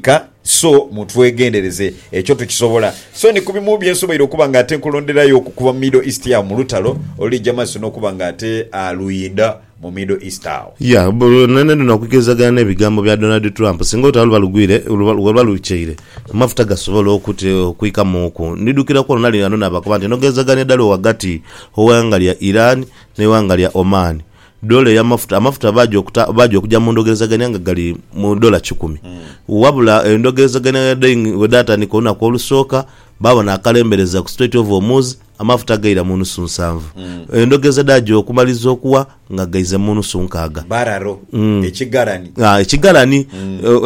Ka, so mutwegendereze. Ekyo tukisobola. So ni ku bimu bye nsoboire okuba nga ate nkulonderayo okukuba mu Middle East agho mu lutalo olulija mu maiso n'okuba nga ate luinda mu Middle East agho. Ya, nhainha dhona okukirizagana n'ebigambo bya Donald Trump. Singa olutalo luba lugwire, luba lukyeire, amafuta gasobola okwikamuuku. Ndidhukiraku olwo nali ghano naabakoba nti, Eno gh'ezagania dhala ghagati gh'eighanga lya Iran n'eighanga lya Oman. Doola ey'amafuta, amafuta baaja okuta, baaja okuja mu ndhogerezagania nga gali mu doola kikumi. Wabula endhogerezagania bwedhaing, bwedhaatandika olunaku olusooka, baabona akalembereza ku Strait of Hormuz, amafuta gaira mu nusu nsanvu. Endhogereza dhaaja okumaliriza okuwa nga gaize mu nusu nkaaga. Bararo, ekigalani. Ah, ekigalani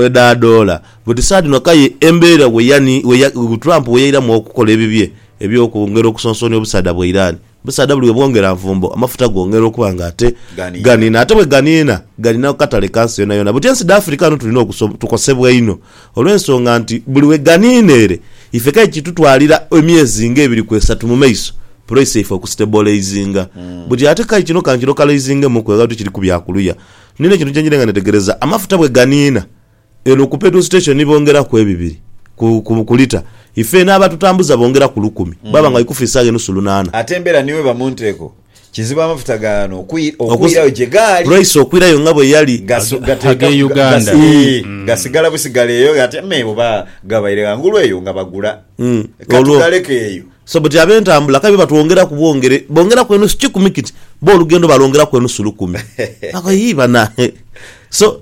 edha doola. But saha dhino aye embeera bwe yani, bwe ya, Trump bwe yairamu okukola ebibye eby'okwongera okusonsoonia obusaadha bwa Iran, Omusaadha buli bwebwongera nvumbo amafuta gongera okuba nga ate ganiina ate bweganiina ganiina ku katale ka nsi yonayona but ensi dha Africa ghano tulina okusob tukosebwa inho olwensonga nti buli weganiina ere ife kale kitutwalira emyezi nga ebiri ku esatu mu maiso price yaife okusiteboleizinga but ate kale kino kankilokaloizingemuku nga bwetuli kiri ku bya kuluya. Nina ekintu kyenjirenga netegereza amafuta bweganiina Eno ku petrol station ni bongeraku ebibiri ku ku lita ife eno abatutambuza bongeraku lukumi baba nga ikufu isaga enusu lunana. Ate embera ni weba munteeko kizibu amafuta gano okwirayo gye gaali. Price okwirayo nga bwe yali. Age Uganda. Gasigala busigala eyo ate me oba gabaire ghangulu eyo nga bagula. Ka tugaleke eyo. So but abentambula kale byo batwongeraku bwongere bongeraku enusu kikumi kiti bo olugendo balwongeraku enusu lukumi. Yii banange so.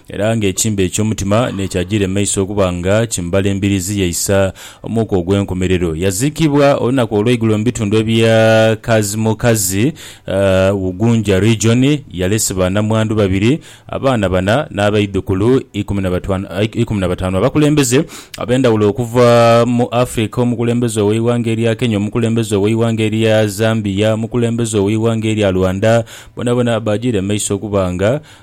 Era ng'ekimbe eky'omutima n'ekyajiira emaiso okuba nga kimbala embiriizi ye isa omuuka ogw'enkomerero. Yaziikibwa olunaku olw'eigulo mu bitundu ebya Kazimokazi, Ugunja Region. Yalese banamwandu babiri, abaana bana n'abaidhukulu ikumi na bataanu abakulembeze ab'endhawulo okuva mu Africa, omukulembeze ow'eighanga erya Kenya, omukulembeze ow'eighanga erya Zambia, omukulembeze ow'eighanga erya Rwanda, bonabona baajiira emaiso okuba nga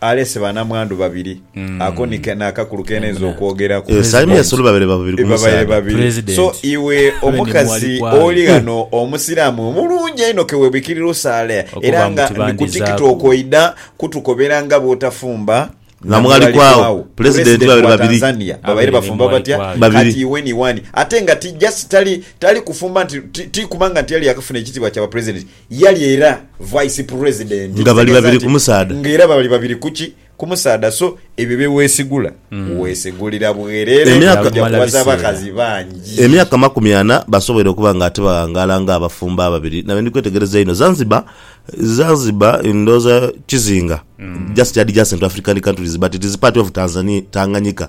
alese banamwandu babiri, ako ni kene akakulu k'enenze okwogeraku. Yes, I mean sulu babere babiri ku Babaire musaadha. babiri. President. So iwe Abe ni omukazi mwali kwali. oli ghano Omusiraamu omulungi einho ke webikirira osaale Okuba era nga nti ni ku bandizaaku. TikTok oidha kutukobera nga bw'otafumba Na Mwalikwawo. President babere wa babiri. Tanzania Abe babaire ni bafumba batya Mwalikwawo. Babiri. kati iwe ni wani ate nga ti just tali tali kufumba nti ti- ti kubanga nti yali yakafuna ekitiibwa kya ba president Yali era Vice President. Nga bali babiri ku musaadha. Nga era bali babiri ku ki? Ku musaadha. So, ebyo bye weesigula, weesigulira bwerere. Emyaka. Oja kuwaza abakazi bangi. Emyaka amakumi ana basoboire okuba nga tibaghangaala nga abafumbo ababiri. Nabe ndi kwetegereza einho. Zanzibar, Zanzibar, ndowooza kizinga. Just yadhi jacent to African countries but it is part of Tanzania, Tanganyika.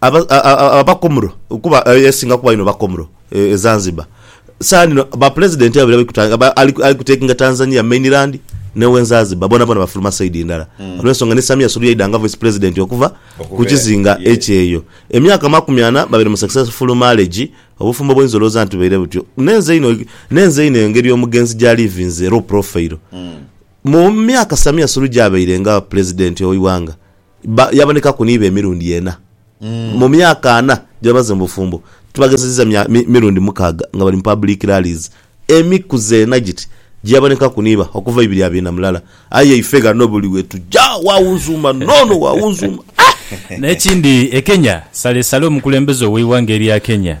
Aba, a, a, a, abakomro kuba e, esinga kuba inho bakomro e, e Zanzibar. Saani no ba pulezidenti babiri abali kuta, aba, ali, ali kutekinga Tanzania mainland ne we Nzazibar boonaboona bafuluma saidi ndala. Olw'ensonga ni Samia Suluhu yaidha nga Voice Pulezidenti okuva ku Okuva kizinga ye. ekyeyo. Emyaka amakumi ana babaire mu successful marriage, obufumbo bwoinza olowooza nti bubaire butyo. Nenze inho, nenze inho engeri omugenzi gya livinze low profile. Mu myaka Samia Suluhu gyabaire nga Pulezidenti ow'eighanga, Ba, yabonekaku n'ibo emirundi ena, mu myaka ana gye bamaze mu bufumbo. Tubagezezza mya, mi, mirundi mukaaga nga bali mu public rallies. Emikuzi ena giti gye yabonekaku n'iba, okuva ibiri abiina mulala. Aye ife ghano buli we tuja, wawunzuuma n'ono, wawunzuuma, ah! N'ekindi, e Kenya, salesale omukulembeze ow'eighanga erya Kenya,